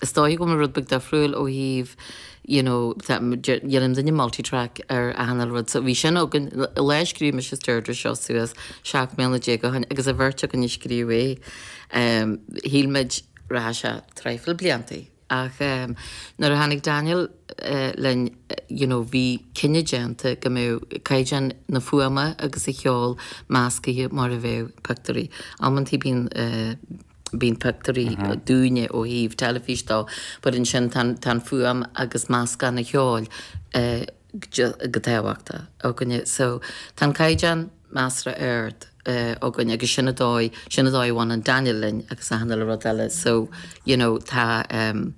Is dóigh go mba rud beag difriúil ó thaobh, you know, tá, dhéanann duine multi-track ar achan uile rud, so bhí sin againn, ón lá a scríobh mise is Deirdre seo suas, seacht mbliana déag ó shin, agus an bheirt againn a scríobh é, shíl muid, rachadh sé traidhfil blianta, ach nuair a tháinig Daniel linn, you know, bhí cinneadh déanta go mbeadh caighdeán na fuaime agus an cheoil meascaithe mar a bheadh pictiúirí. Amantaí bíonn. bíonn pictiúirí dúinne ó thaobh teilifíse de, but ansin tá an, tá an fuaim agus meascán an cheoil chomh tábhachtach againne. So tá an caighdeán measartha ard againn agus sin an dóigh, sin an dóigh a bhaineann Daniel linn agus achan uile rud eile. So, you know, tá ehm,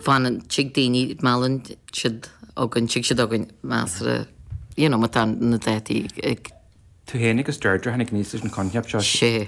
fanann, tig daoine, meallann siad againn, tig siad chugainn measartha, you know, má tá na dátaí ag. Tú fhéin agus Deirdre a tháinig aníos leis an choincheap seo. Sea.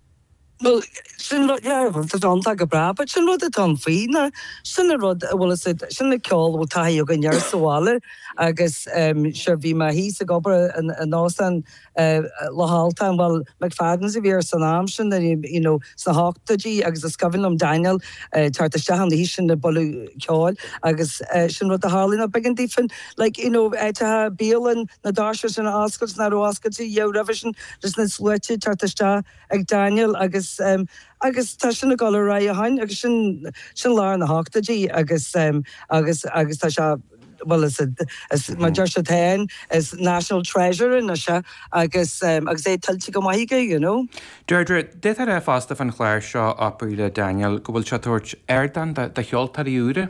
Bhuel, sin rud dearfa, tá sé iontach go breá, but sin rud atá ann faoi ná, sin an rud a bhfuil fhios a'd, sin an ceol a bhfuil taithí againn air sa bhaile agus ehm, sure, bhí mé thíos ag obair in Óstán Loch Altan, bhuel, McFadden's a bhí air san am sin, you know, sna hochtóidí agus is cuimhin liom Daniel ag teacht isteach an oíche sin ag bualadh ceoil agus sin rud a tharlaíonn, ná beagán daofa, like, you know, áiteacha, bialann, na doirse sin a oscailt nach raibh oscailte a dhath roimhe sin. leis na sluaite ag teacht isteach ag Daniel agus agus tá sin ag dul ar aghaidh ó shin agus sin sin lár na hochtóidí agus agus agus tá sé bhuel is is mar deir siad féin is national treasure anois é agus agus é tuillte go maith aige you know. Deirdre, deirtear é fosta fán chlár seo Opry le Daniel go bhfuil sé ag tabhairt ardán do cheoltóirí úra?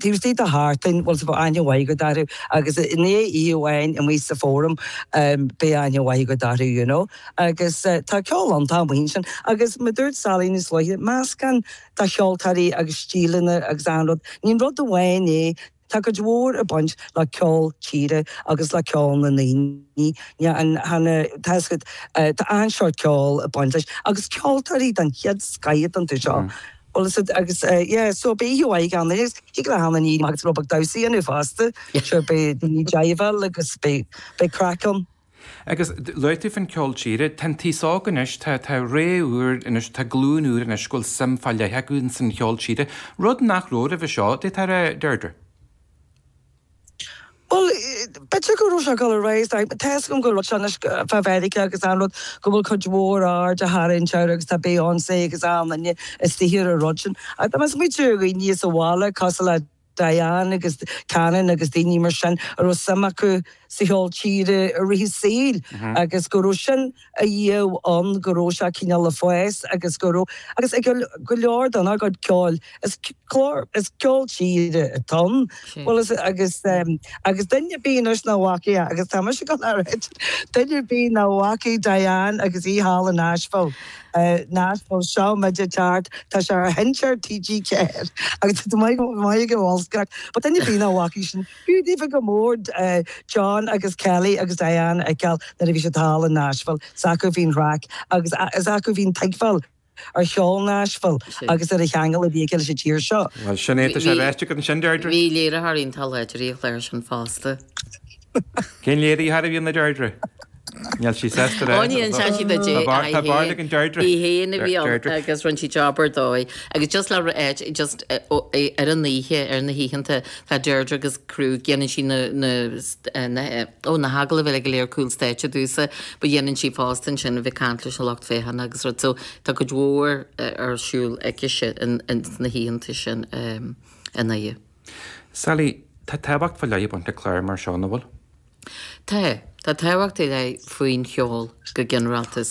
Tuesday the heart thing, bhuel, so bheadh aithne mhaith agat orthu agus i ndiaidh oíche amháin amuigh sa Forum, beidh aithne mhaith agat orthu, you know. Agus tá ceol ann, tá a mbuíon sin agus mar a dúirt Sally níos luaithe, meascán de cheoltóirí agus stíleanna agus achan rud, ní rud amháin é, tá cuid mhór ag baint le ceol tíre agus le ceol na ndaoine, tá achan seort ceoil ag baint leis agus ceoltóirí den chéad scoith atá iontu seo. Bhuel, is é agus, yeah, so bí thú aghaidh ann is, thig le hAnna Ní agus Rob ag damhsaí inniu fosta, sure, beidh daoine ag jiveáil agus beidh, beidh craic ann. Agus luaigh tú fán cheol tíre, tá an t-aos óg anois, tá, tá ré úr anois, tá glúin úr anois go bhfuil suim fá leith acu in san cheol tíre, rud nach raibh roimhe seo, an dtig a rá, Deirdre? Bhuel, b'fhéidir go raibh sé ag dul ar aghaidh, tá fhios agam go raibh sé anois fá Mheiriceá agus an rud, go bhfuil cuid mhór aird á tharraingt air agus tá Beyoncé agus an uile dhuine istigh ar an rud sin. Ach tá mé ag smaointiú ar dhaoine sa bhaile, cosúil le Diane agus Cannon agus daoine mar sin a raibh suim acu sa cheol tíre i rith a saoil agus go raibh sin, a dhíobh ann go raibh sé cineál le fás agus go raibh agus ag go leor den ár gcuid ceoil. Is clár is ceol tíre atá ann. Bhuel is agus agus duine ar bith anois nach bhfaca é agus tá mise ag rá duine ar bith nach bhfaca Diane agus í thall in Nashville Nashville seo muid ag teacht tá sé ar sheinnteoir TG4 agus tá maith go maith go bhfuil craic but duine ar bith nach bhfaca sin B'fhiú daofa go mór John agus Kelly agus Diane a fheiceáil nuair a bhí siad thall i Nashville. Is acu a bhí an chraic agus is acu a bhí an tuigbheáil ar cheol Nashville agus ar an cheangal a bhí aige leis an tír seo. Bhuel, sin é, tá sé ráite agat ansin, Deirdre. Bhí léiritheoirí an chláir iontach air sin fosta. Cén léiritheoir a bhí ann a Deirdre? Níl sí sásta le. Ó níl sásta le Dé. Tá bád ag an Deirdre. Í fhéin a bhí ann agus rinne sí job ar dóigh. Agus just le just ar an oíche, ar na hoícheanta, tá Deirdre agus crew, dhéanann sí na, na, ó na hagallaimh eile go léir cúl stáitse domhsa, but dhéanann sí fosta ansin a bheith ag caint leis an lucht féachana agus rud so tá cuid mhór ar siúl aicise sna hoícheanta sin an oíche. Sally, tá tábhacht faoi leith ag baint le cláir mar seo, an bhfuil? Tá. Tá tábhacht ar leith faoin cheol go ginearálta. Is.